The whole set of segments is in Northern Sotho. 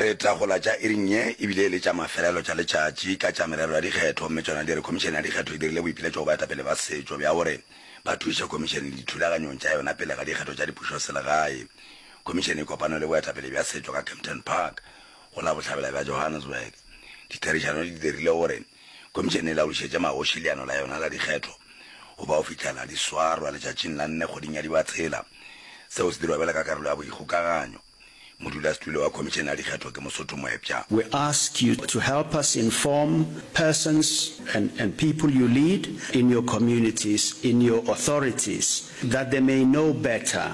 Re tla go la tša iring ye e bile e le tša mafelelo tša letšatši ka tša merero ya dikgetho mme tšona di re Khomišene ya Dikgetho e dirile boipiletšo go baetapele ba setšo bja gore ba thuše Khomišene dithulaganyong tša yona pele ga dikgetho tša dipušoselegae. Khomišene e kopane le boetapele bja setšo ka Kempton Park go la bohlabela bja Johannesburg. Ditherišano di dirile gore Khomišene e laodišetše magoši leano la yona la dikgetho go bao fihlela di swarwa letšatšing la nne kgweding ya Dibatsela. Seo se dirwa bjalo ka karolo ya boikgokaganyo. Modulasetulo wa Khomišene ya Dikgetho ke Mosotho moepša. We ask you to help us inform persons and and people you lead in your communities, in your authorities that they may know better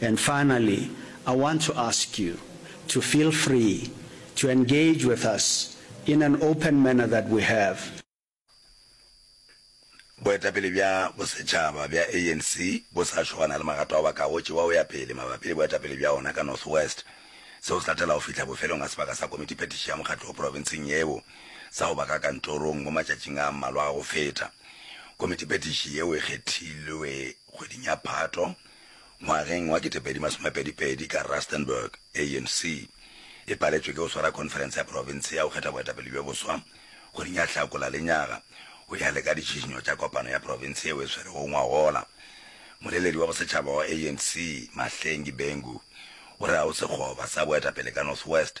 And finally I want to ask you to feel free to engage with us in an open manner that we have. Boetapele bja bosetšhaba bja ANC bo sa šo ba na le magato ao ba ka go tšewa go ya pele mabapi le boetapele bja ona ka North West. Seo se latela go fihla bofelong ga sebaka sa Komiti Phetiši ya Mokgatlo wo Profenseng yeo sa go ba ka kantorong mo matšatšing a mmalwa a go feta. Komiti Phetiši yeo e kgethilwe Kgweding ya Phato ngwageng wa 2022 ka Rustenburg, ANC e paletšwe ke go swara khonferense ya profense ya go kgetha boetapele bjo boswa kgweding ya Hlakola lenyaga go ya le ka ditšhišinyo tša kopano ya profense yeo e swerego ngwagola. Moleledi wa bosetšhaba wa ANC, Mahlengi Bengu, o re ga go sekgoba sa boetapele ka North West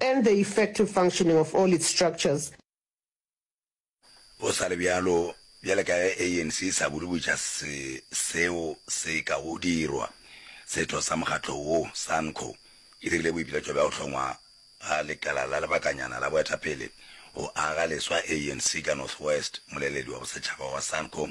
and the effective functioning of all its structures. Go sa le bjalo, bjale ka ge ANC e sa bolebotša se seo se ka go dirwa, setho sa mokgatlo wo sa NCCO e dirile boipiletšo bja go hlongwa ga lekala la lebakanyana la boetapele go aga leswa ANC ka North West. Moleledi wa bosetšhaba wa sa NCCO,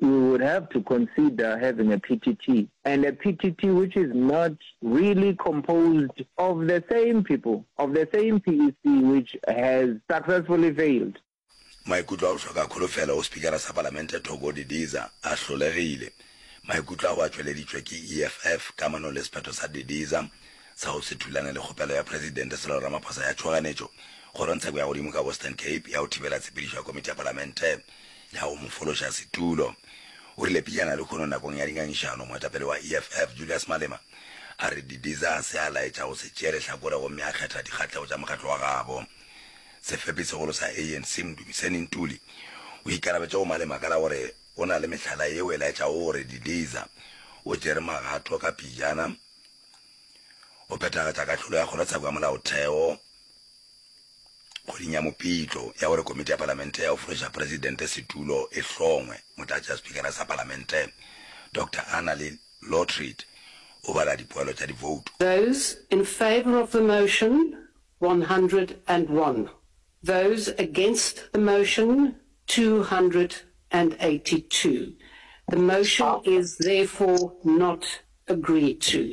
You would have to consider having a PTT and a PTT which is not really composed of the same people of the same PEC which has successfully failed. Maikutlo a go hloka kholofelo go Spikara sa Palamente Thoko Didiza a hlolegile. Maikutlo ao a tšweleditšwe ke EFF kamanong le sephetho sa Didiza sa go se thulane le kgopelo ya Presidente Cyril Ramaphosa ya tšhoganetšo kgorong tsheko ya godimo ka Western Cape ya go thibela tshepedišo ya Komiti ya Palamente Ya go mo fološa setulo. O rile pejana lehono nakong ya dingangišano, moetapele wa EFF, Julius Malema, a re Didiza se a laetša go se tšee lehlakore gomme a kgetha dikgahlego tša mokgatlo wa gabo. Sefepisegolo sa ANC, Mdumiseni Ntuli, o ikarabetše go Malema ka la gore o na le mehlala yeo e laetšago gore Didiza o tšere magato ka pejana go phethagatša kahlolo ya kgorotsheko ya molaotheo. kgweding ya Mopitlo ya gore Komiti ya Palamente ya go Fološa Presidente Setulo e hlongwe, Motlatšaspikara sa Palamente, Doctor Annalie Lotriet, o bala dipoelo tša divoutu. Those in favour of the motion, one hundred and one. Those against the motion, two hundred and eighty two. The motion is therefore not agreed to.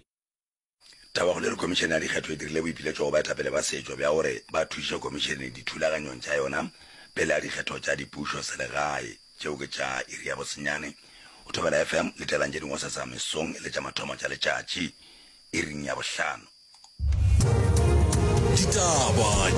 Taba go le re Komišene ya Dikgetho e dirile boipiletšo go baetapele ba setšo bja gore ba thuše Komišene dithulaganyong tša yona pele ga dikgetho tša dipušo selegae tšeo ke tša iri ya bosenyane go Thobela FM le telang tše dingwe sesa mesong le tša mathomo tša letšatši iring ya bohlano. Ditaba.